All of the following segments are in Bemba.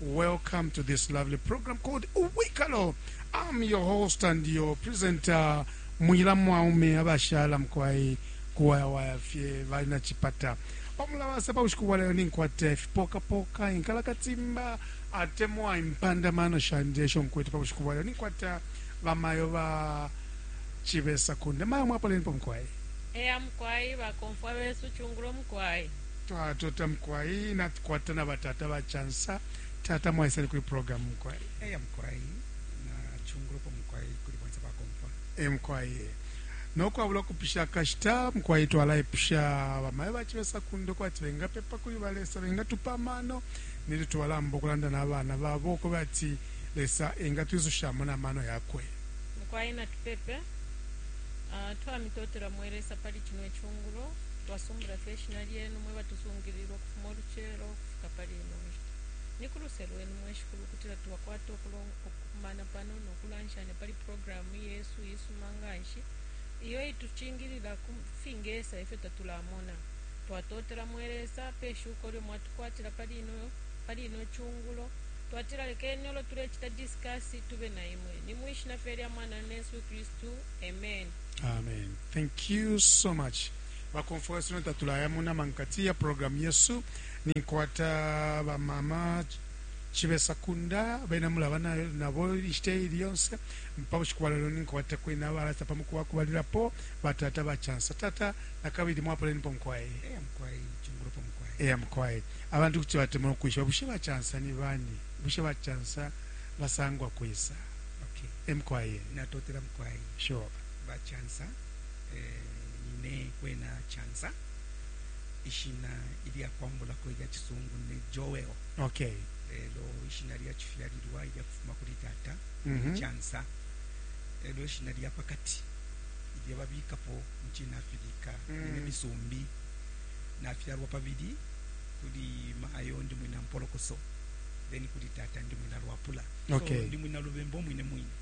Welcome to this lovely program called Uwikalo. I'm your host and your presenter, Mwila Mwaume abashala mkwai kuwayawaya fye bali na chipata pamulabasa pa bushiku bwa lero ninkwata ifipokapoka inkalakatimba atemwa impandamano shandi esho nkwete pa bushiku bwa lero ninkwata bamayo ba chibesa kunde mayo mwapolenipo mkwai eya mukwai bakomfwa besu chungulo mukwai twatota mukwai natukwata na batata ba chansa tata mwaisani kuli program mukwai eya mukwai na chungulupo mukwai kuli bonse bakompa e mukwai nokwabula kupisha kashita mukwai twalaipusha bamayo bachibesa kundo kwati bengapepa kuli balesa bengatupa amano nili twalamba okulanda nabana babo kuba ati lesa engatwizushamo namano yakwe mukwai natupepe uh, ah, twamitotela mwelesa pali chino chungulo Twasumbula fye ishina lyenu, mwe batusungilila ukufuma ulucelo ukufika pali ino nshita. Ni ku luse lwenu, mwe Shikulu, ukutila twakwata ukukumana pano no kulanshanya pali programu yesu iisuma nga nshi iyo iitucingilila ku fingesa ifyo tatulamona. Twatotela, mwe Lesa, pe shuko ilyo mwatukwatila pali ino cungulo. Twatila lekeni ulo tulecita diskasi tube na imwe. Ni mwi shina fye lya Mwananu, Yesu Kristu. Ameni. Ameni. Thank you so much ba Confuas no tatulaya mu nama nkati ya program yesu ninkwata ba mama chibesa kunda bena mulaba na- nabo ishite ili yonse mpa bushiku bwa lelo ninkwata kwena balasa pa muku wakubalilapo batata bachansa tata na kabili mwapoleni po mukwaye Eh, mukwayi chungulo pa mukwayi eya mukwaye abantu kuti batemwa ukwishiba bushe bachansa ni bani bushe bachansa basangwa kwisa okay emukwaye natotela mukwayi sure ba Chansa eh, nine kwena Chansa ishina ilya kwambulako ilya chisungu ne Joel okay lelo ishina lya chifyalilwa ilya kufuma kuli tata mm -hmm. Chansa lelo ishina lya pakati ilya babikapo mchina Afrika mm -hmm. ne misumbi nafyalwa pabili kuli maayo ndi mwina mpolokoso then kuli tata ndi mwina lwapula okay. so ndi mwina lubembo mwine mwine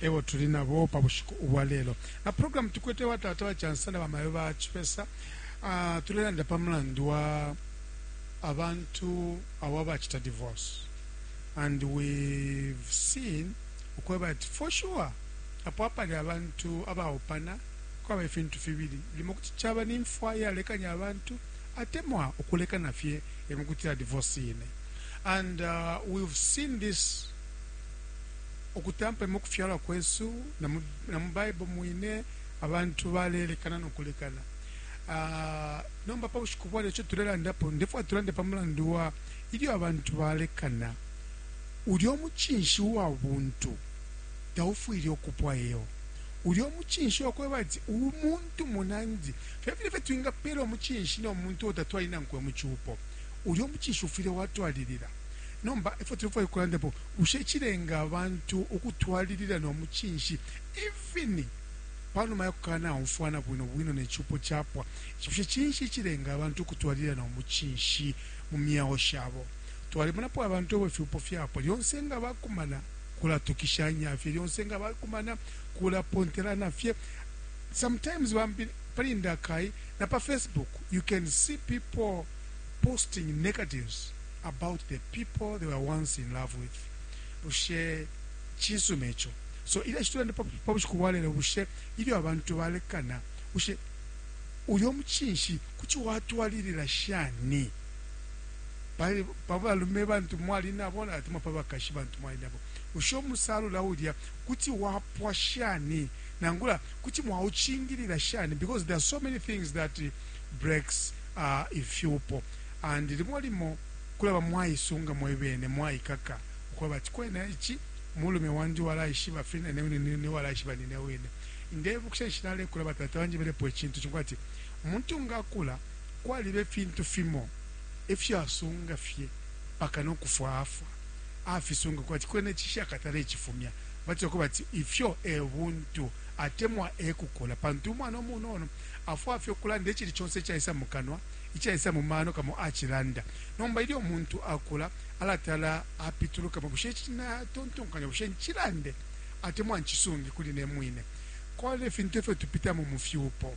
e bo tuli na bo pa bushiku ubwa lelo. Na programu tukwete wa Tata wa Cansa na Bamayo ba Chipesa, ah, tulelanda pa mulandu wa abantu abo abacita divorce and we've seen ukweba ati for sure apo apali abantu abaupana kwaba ifintu fibili limo kuti caba ni mfwa yalekanya abantu atemwa ukulekana fye emukutila divorce ine and uh, we've seen this Ukutampa mu kufyalwa kwesu na mu Baibo mwine, abantu balelekana no kulekana. Nomba pa bushiku bwa lelo ico tulelandapo, ndefwaya tulande pa mulandu wa ilyo abantu balekana. Ulya umucinshi uwa buntu taufwile ukupwa iyoo. Ulya umucinshi wa kweba ati umuntu munandi, filya fine fye twingapela umucinshi no muntu uo tatwali nankwe mu cupo, ulya umucinshi ufwile watwalilila. Nomba ifyo tulefwaya ukulandapo, Bushe cilenga abantu ukutwalilila no mucinshi even pa numa ya kukanaumfwana bwino bwino ne cupo capwa? Bushe cinshi icilenga abantu ukutwalilila no mucinshi mu myeo shabo? Twalimonapo abantu abo ifyupo fyapwa, lyonse nga bakumana kulatukishanya fye, lyonse nga bakumana kulapontelana fye, sometimes bambi pali ndakai na pa Facebook you can see people posting negatives. about the people they were once in love with bushe chinsuma icho so ile chitulande pa bushiku bwalelo bushe ilyo abantu balekana bushe uyo muchinshi kuti watwalilila shani pa balume bantu mwali nabo natima pa bakashi bantu mwali nabo usho musalula ulya kuti wapwa shani nangula kuti mwauchingilila shani because there are so many things that breaks uh, if you pop And limo limo kulaba mwaisunga mwebene, mwaikaka ukweba ati kwena ici mulume wandi walaishiba fi nanebo nine walaishiba nine wine. Ndebukisha ninshi nalekula batata banjebelepo icintu cimo ati umuntu nga akula kwaliba ifintu fimo ifyo asunga fye mpaka nokufwa afwa afisunga kwati kwena ici shakatale icifumya. Batila ukwebati ifyo ebuntu atemwa ekukula pantu umwana umunono afwaya fye ukulanda icili conse icaisa mukanwa. Icaisa mu mano kamo acilanda. Nomba ilyo umuntu akula, alatala apitulukamo, bushe ici na tontonkanya, bushe ncilande atemwa ncisungi kuli ne mwine? Kwali ifintu ifyo tupitamo mu fyupo.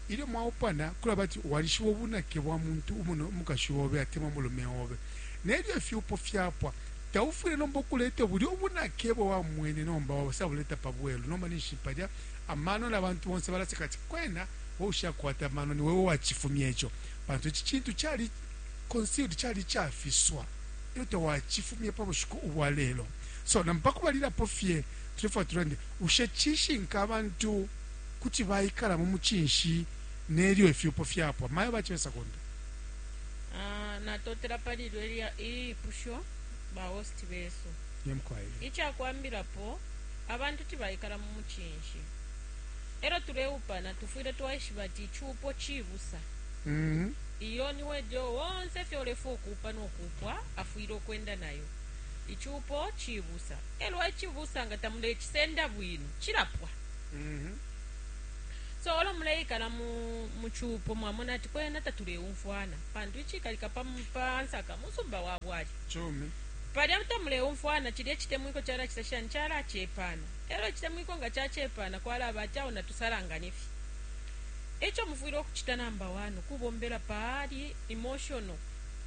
Ilyo mwaupana, kulaba ati walishiba ubunake bwa muntu umuno umukashi obe atemwa umulume obe. Nelyo ifyupo fyapwa, taufwile nomba ukuleta bulya ubunake ebo wamwene nomba wabasabuleta pa bwelu. Nomba ninshi palya amano na bantu bonse balaseka ati, kwena! We ushakwata amano, ni we uwacifumya ico, pantu ici cintu cali concealed, cali icafiswa, elyo tawacifumya pa bushiku ubwa lelo. So, nampo pakubalilapo fye, tulefwaya tulande, bushe cishinka abantu kuti baikala mu mucinshi nelyo ifyupo fyapwa? Mayo ba Chibesa Kunta. Ah, natotela pali ilyo ilya ilipusho ba host besu. Nemkwaile. Icakwambilapo, abantu tibaikala mu mucinshi. E lyo tuleupana, tufwile twaishiba ati icupo cibusa. Mm. Iyo ni wedio wonse fye ulefwa ukuupa no kuupwa afwile ukwenda nayo. Icupo cibusa. E lyo icibusa nga tamulecisenda bwino, cilapwa. Mhm. So olo muleikala mu, mu cupo mwamona ati kwena tatuleumfwana pantu icikalika pa, mu- pa nsaka musumba wa bwali Cumi. palya tamuleumfwana cilya icitemwiko calacita shani calacepana Elo icitemwiko nga cacepa na kwalaba ati awo natusalangane fye. Eco mufwile ukucita number one ukubombela pali emotional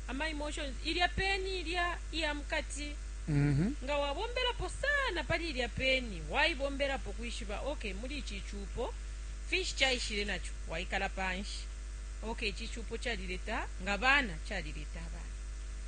ama emotions ilya peni ilya iya mukati mm -hmm. nga wabombelapo sana pali ilya peni waibombelapo kwishiba okay muli ici cupo finshi caishile naco waikala panshi okay ici cupo calileta nga bana calileta abana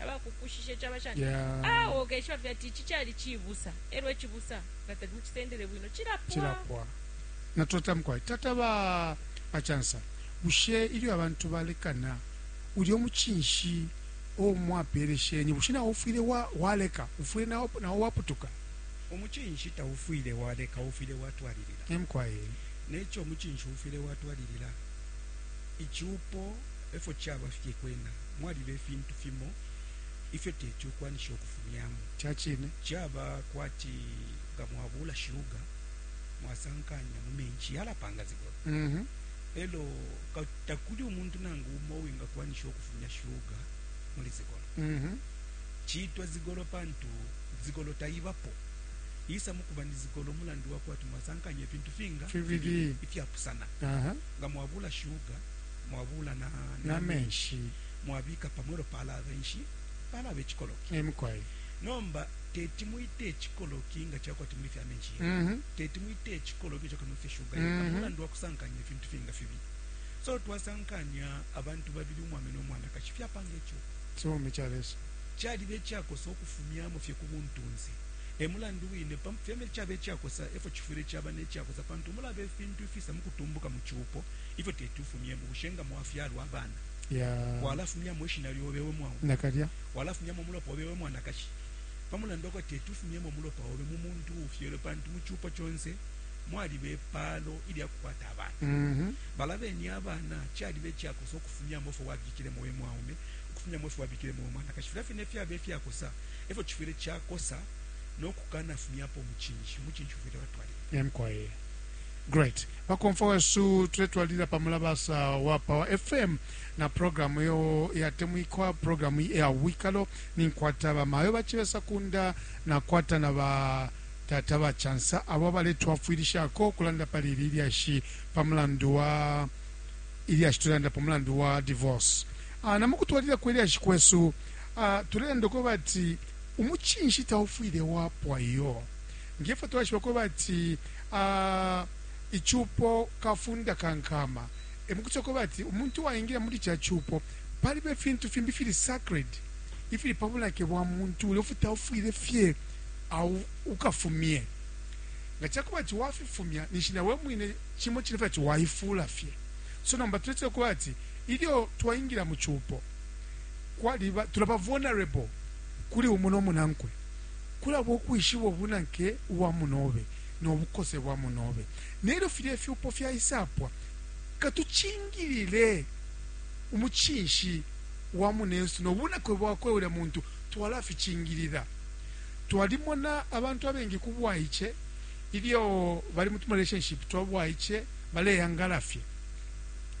abakukushishe caba shani awo ah, ukeshiba fye ati ici cali cibusa elwo icibusa nga tali mucisendele bwino cilapwa natota mukwai tata ba bachansa bushe ilyo abantu balekana ulyo muchinshi o mwapereshenye bushe nawo ufwile wa, waleka ufwile nawo, nawo waputuka umuchinshi taufwile waleka ufwile watwalilila emkwaye necho umuchinshi ufwile watwalilila ichupo efo chaba fye kwena mwaliba ifintu fimo ifyo teti ukwanishe ukufumyamo. Ca cine. Caba kwati nga mwabuula shuga mwasankanya mu menshi, yalapanga zibolo. Mm -hmm. Elo takuli umuntu nangu umo uwingakwanisha ukufumya shuga muli zigolo. Mm -hmm. Ciitwa zigolo pantu zigolo taibapo isa mukuba ni zigolo mulandu wakwati mwasankanya ifintu finga fibili ifyapusana. Uh -huh. Nga mwabula shuga mwabula na, na, na menshi mwabika pamo elo palaba inshi palaba icikoloki emukwai nomba teti mwite icikoloki nga cakwa timuli fya menshi mm -hmm. teti mwite icikoloki cakwa timuli fya shuga mm -hmm. mulandu wakusankanya ifintu finga fibi so twasankanya abantu babili umwame no mwanakashi fyapanga ico cumi ca lesu caliba icakosa okufumyamo fye ku buntunzi emulandu wine fyeme cabe cakosa efo cifwile caba necakosa pantu mulaba ifintu ifisa mukutumbuka mu cupo ifyo teti ufumyemo bushe nga mwafyalwa abana yeah. walafumyamo ishina lyobe we mwawu nakalya walafumyamo umulopa obe we mwanakashi pamulandu wako teti ufumyemo umulopa obe mu muntu uufyelwe pantu mu cupo conse mwaliba epaalo ilyakukwata abana mm -hmm. balabeni abana caliba ecyakosa okufumyamo fo wabikilemo we mwaume okufumyamo fo wabikilemo we mwanakashi filya fine fyaba efyakosa efyo cifwile cakosa nokukana fumyapo mucinshi mucinshi ufwile watwalira emkwaye great Bakomfwa wesu, tuletwalilila pa mulabasa wa Power FM na programu iyo iyatemwikwa, programu iya Ubwikalo. Ninkwata ba mayo ba Chibesa Kunda, nakwata na ba tata ba Chansa, abo abaletwafwilishako ukulanda pali ili lyashi pa mulandu wa ilyashi tulelanda pa mulandu wa divorce. Ah, na mukutwalila kwe lyashi kwesu, ah, tulelanda uko bati umuchinshi taufwile wapwa iyo. Ngefyo twaishiba kwebati icupo kafunda ka nkama, emukucita kwebati umuntu uwaingila muli ca cupo paliba ifintu fimbi ifili sacred ifili pa bunake bwa muntu ulya ufuti taufwile fye ukafumye. Nga cakubati wafifumya ninshi na we mwine cimo cine fye ati waifula fye. So nomba tuletila kwebati ilyo twaingila mu cupo kwaliba tulaba vulnerable. kuli umo no munankwe, kulaba ukwishiba ubunake ubwa munobe no bukose bwa munobe. Nelyo filya ifyupo fyaisapwa, katucingilile umucinshi wa munensu no bunake bwakwe. Ulya muntu twalaficingilila. Twalimona abantu abengi ku bwaice ilyo bali mu tumarelationship twa bwaice baleyangala fye,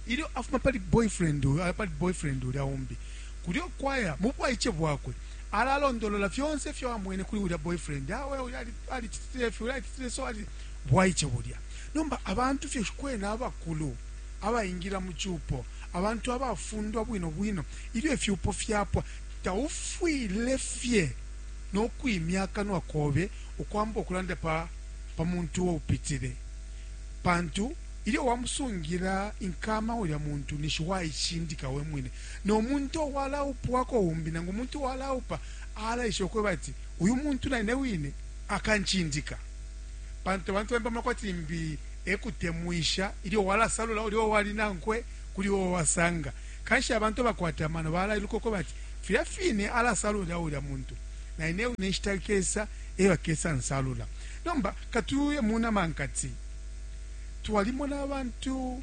ilyo afuma pali boyfriend uyu aya pali boyfriend ulya umbi. kulyo kwaya mu bwaice bwakwe alalondolola fyonse ifyo amwene kuli ulya boyfriend awe ulya alicitile ifi ulya alicitile so ali bwaice bulya nomba abantu fye kwena abakulu abaingira mu cupo abantu abafundwa bwino bwino ilyo ifyupo fyapwa taufwile fye no kwimya akanwa kobe ukwamba ukulanda pa pa muntu uwo upitile pantu ilyo wamusungira inkama ulya muntu nishi waicindika we mwine no muntu uwalaupwako umbi nangu umuntu uwalaupa alaishiba ukweba ati uyu muntu naine wine akancindika pantu abantu bambi bamona kwati limbi ekutemwisha ilyo walasalula ulio wali nankwe kuli uo wasanga kanshi abantu abakwata amano balailuka ukweba ati filya fine alasalula ulya muntu naine wine nshita kesa eyo akesa nsalula nomba katuye munama nkati twalimona abantu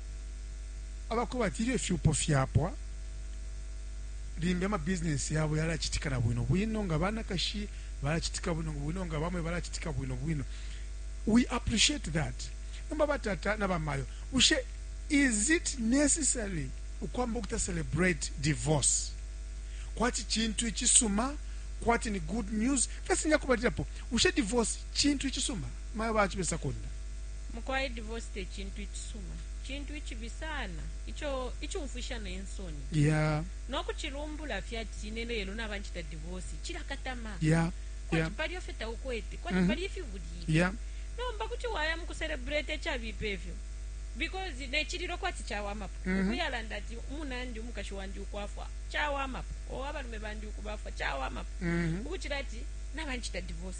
aba kweba ati ilyo ifyupo fyapwa, limbi amabizinesi yabo yalacitika na bwino bwino, nga banakashi balacitika bwino bwino, nga baume balacitika bwino bwino. We appreciate that. Nomba batata na bamayo, bushe is it necessary ukwamba ukuta celebrate divorce kwati cintu icisuma kwati ni good news? That's nyakubalilapo, bushe divorce cintu icisuma? Mayo baci besakunda Mukwai divorce tecintu icisuma, cintu icibi sana ico icumfwisha ne nsoni. Yeah. Nokucilumbula fye ati ine lelo naba ncita divorce cilakatama. Yeah. Kwati yeah. palio fye taukwete, kwati mm -hmm. pali ifibulile. Yeah. Nomba kuti waya mukucelebrate ecabipa efyo. Because nechililo kwati chawamapo. Mm -hmm. Ukuyalanda ati umunandi umukashi wandi ukwafwa chawamapo. Owabalume bandi ukubafwa chawamapo. Mm -hmm. Ukuchira ati nabanchita divorce.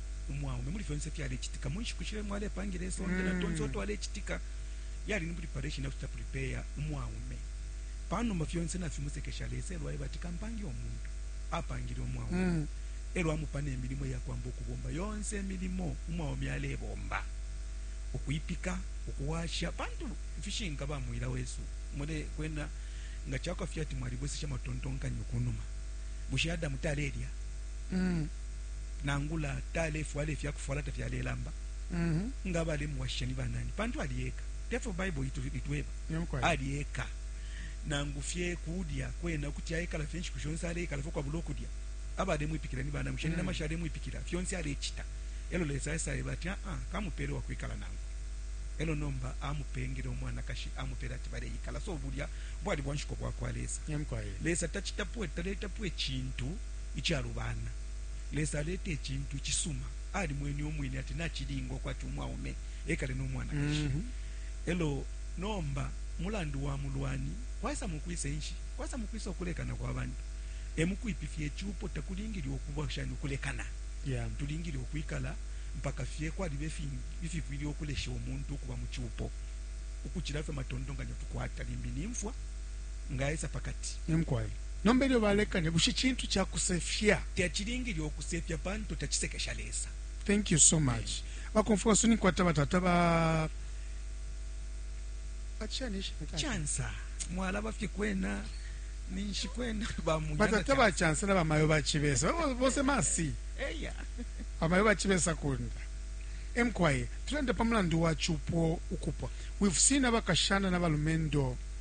umwaume muli fyonse fyalecitika mu nshiku shile mwalepangila isonde na tonse mm. twalecitika yali ni preparation yakucita prepare umwaume panuma fyonse nafimusekesha lesa elwaye bati kampange omuntu apangile umwaume mm. elwa amupana emilimo yakwamba okubomba yonse emilimo umwaume alebomba ukwipika ukuwasha pantu fishinka bamwila wesu mule kwena nga chakwafya ati mwalibwesesha matontonkanyo kunuma bushe adamu talelya mm. nangula talefwala ifya kufwala tafyalelamba mhm. nga balemuwashisha ni banani pantu ali eka tefyo baibo itweba ali eka nangu fye kudya kwena kuti ayekala fye nshiku shonse aleikala fye kwabula okudya abalemwipikila ni banangu sheni mm. namasha alemwipikila fyonse alecita elo lesa aisayeba ati aa ah, ah, kamupele wakwikala nangu elo nomba amupengele umwanakashi amupele ati baleikala so bulya bwali bwanshiko bwakwa lesa lesa tacitapwe taletapo ecintu icalubana. Lesa aleta icintu icisuma. Alimwene Umwine ati nacilinga ukwati umwaume ekale no mwanakashi. Mm -hmm. Elo nomba mulandu wa mulwani kwaisa mukwisa inshi? Kwaisa mukwisa ukulekana kwa bantu. Emukwipifya icupo takulingile ukuba shani ukulekana. Yeah. Tulingile ukwikala mpaka fye kwalibe fingi ififwile ukulesha umuntu ukuba mucupo. Ukucila fye matontonkanyo tukwata limbi nimfwa. nga aisa pa kati. Ee mukwai. Nomba ilyo balekanya, bushe cintu ca kusefya? Tacilingile ukusefya pantu tacisekesha Lesa. Thank you so much. Bakomfwa wesu ninkwata batata ba bachani ishina tata. Chansa. Mwalaba fye kwena ninshi kwena ba munyana. Batata ba Chansa na bamayo ba Chibesa. Bose masi. Eya. Bamayo ba Chibesa kunda. Emkwaye, tulenda pa mulandu wa chupo ukupwa. We've seen abakashana na balumendo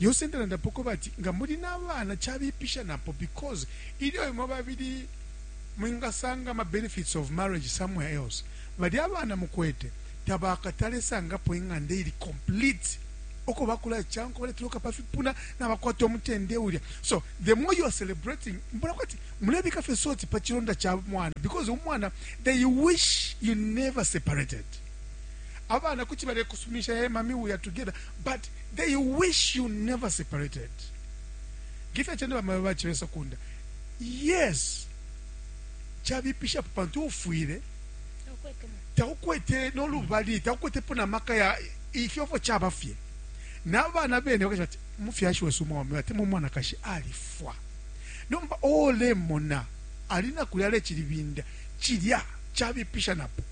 Lyonse ndalandapo ukweba ati nga muli na bana cabipisha napo because ilyo imwe babili mwingasanga ama benefits of marriage somewhere else, balya abana mukwete tabakatale sangapo ing'anda iili complete uko bakulacankwa baletoloka pa fipuna nabakwata umutende ulya. So the more you are celebrating, mbona kwati mulebika fye salt pa cilonda ca mwana because umwana they wish you never separated. abana kuti balekusuminisha hey mami we are together but they wish you never separated ngefya chende bamayo bachibesa kunda yes chabipishapo pantu ufwile taukwete nolubali taukwetepo na maka ya ifyofo chaba fye nabana bene bakasha ati mufyashi wesu umwaume ati mumwanakashi alifwa nomba olemona alina kulya alechilibinda cilya cabipisha napo.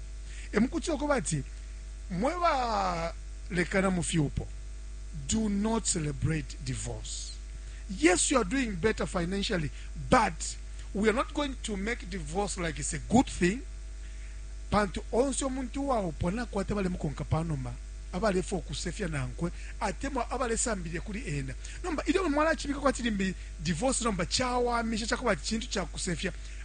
Emukutila ukweba ati, mwe ba lekana mu fyupo, do not celebrate divorce. Yes, you are doing better financially, but we are not going to make divorce like it's a good thing. Pantu onse omuntu uwaupwa nakwata balemukonka pa numa abalefa okusefya nankwe atemwa abalesambilile kuli ena nomba ilyo mwalacibika kwati limbi divorce nomba cawamisha cakuba ati cintu cakusefya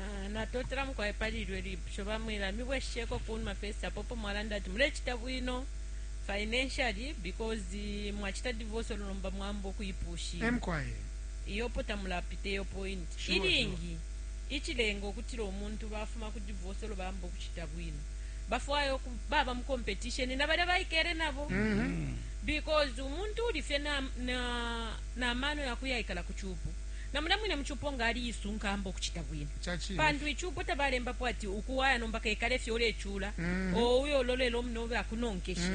Ah, natotela mukwai pali ilyo lipusho bamwela mibwesheko kunuma first apopo mwalanda ati mulechita bwino financially because eh, mwachita divorce lulomba mwamba ukuipusha emkwaye iyopo tamulapita iyo point Sure, ilingi ichilenga okutila omuntu bafuma ku divorce olo bamba okuchita bwino bafwaya oku- baba mu competition na balya baikele nabo because umuntu uli fye na- na- n'amano yakuyaikala ku chupo Na mulya mwine mu cupo nga ali-isunka amba ukucita bwino. Ca cine. Pantu icupo tabalembapo ati uku waya nomba kekale fye ulecula, oo uye ulolele umunobe akunonkeshe.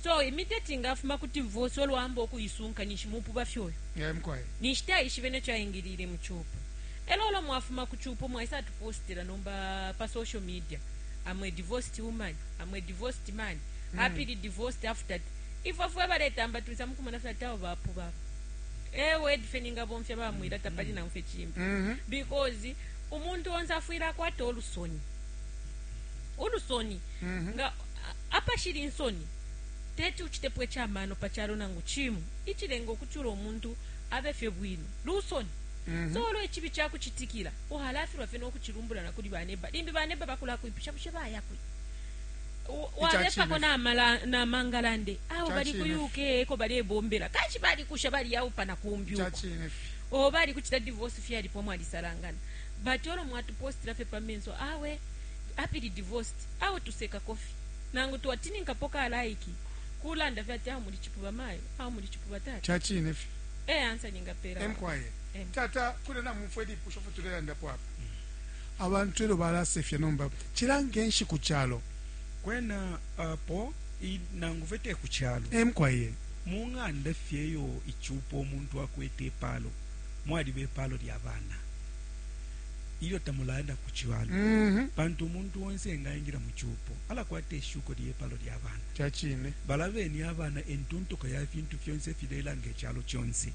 So immediate nga afuma ku divorce olo amba ukuisunka ninshi mupuba fye uyo. Eh, mukwai. Ninshi taishibe ne co aingiliile mu cupo. E lyo olo mwafuma ku cupo mwaisa atupostela nomba pa social media, I'm a divorced woman, I'm a divorced man, happily divorced after. Ifwe fwe baletamba twisa mukumona fye ati abo bapuba abo. e word fye ningabomfya bamwila tapali nangu fye cimbi Mhm. because umuntu onse afwile akwata ulusoni ulusoni Mhm. nga a- apashili insoni teti ucitepo icamano pa calo nangu cimu icilenga ukucula umuntu abe fye bwino lusoni Mhm. so olwo icibi cakucitikila uhalafilwa fye nokucilumbulana kuli baneba limbi baneba bakulakwipisha bushe bayakwi walepako na mangalande awo bali ku uk eko balebombela kanshi balikusha baliyawupana kumbi o bali kucita divorce fyalipo mwalisalangana but olo mwatupostila fye pa menso awe apili divorced awo tuseka kofi nangu twatininkapo kalaiki kulanda fye ati awo muli cipuba mayo awo muli cipuba tata cacine fye e ansa ningapela emkwaye tata kule namumfwe lipusho fye tulelandapo apa Abantu elyo balasefya nomba cila nge nshiku calo. Kwena apo i nangu fe te ku calo. E mukwai ee. Mu ng'anda fye iyo icupo umuntu akwete ipaalo mwaliba ipaalo lya bana ilyo tamulaya na ku cibala pantu umuntu onse engaingila mu cupo alakwata ishuko lye paalo lya bana. Ca cine. Balabeni abana e ntuntuko ya fintu fyonse ifilelanga icalo conse.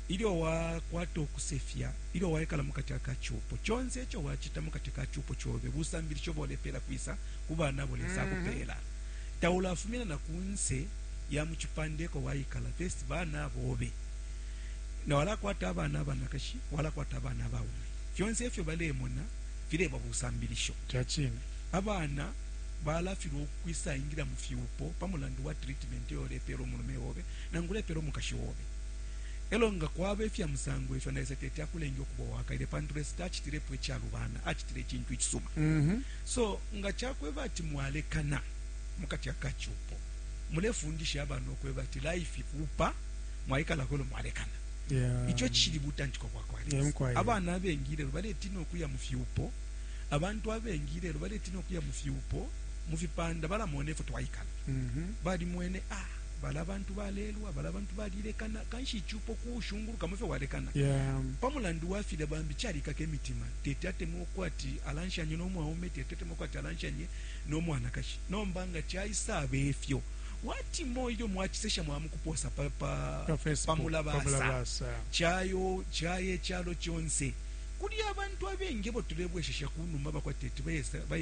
Ilyo wa kwato kusefya, ilyo waikala mukati aka cupo, conse ico wa cita mukati ka cupo cobe busambilisho bo lepela kwisa ku bana abo Lesa akupela. Taula fumina na kunse ya mu cipande eko waikala, versi bana bobe. Nga wala kwata abana abanakashi, wala kwata abana abaume. Fyonse ifyo balemona fileba busambilisho. Ca cine, abana bala filwa ukwisa ingila mu fyupo pa mulandu wa treatment iyo ulepela umulume obe nangu ulepela umukashi obe. E lyo nga kwaba ifya musango ifyo, na Lesa teti akulenge ukuba uwakaele, pantu Lesa tacitilepo icalubana, acitile icintu icisuma. So nga ca kweba ati mwalekana mu kati aka cupo, mulefundisha abana ukweba ati life kuupa, mwaikalako e lyo mwalekana. Ico icishili butantiko bwa kwa Lesa. Abana abengi ilelo baletiina ukuya mu fyupo, abantu abengi ilelo baletiina ukuya mu fyupo, mu fipanda balamona ifyo twaikala, balimwene a. balya bantu balelwa, balya bantu balilekana, kanshi icupo kuushungulukamo ifyo walekana yeah. pa mulandu wa filya bambi calikaka imitima, teti atemwe uko ati alanshanye no mwaume, teti atemwe uko ati alanshanye no mwanakashi. Nomba nga caisaba ifyo wati mo ilyo mwacisesha mwamukuposa pa, pa, pa, pa mulabasa cayo caye calo conse kuli abantu abengi ebo tulebweshesha kunuma bakwateti bayesa baye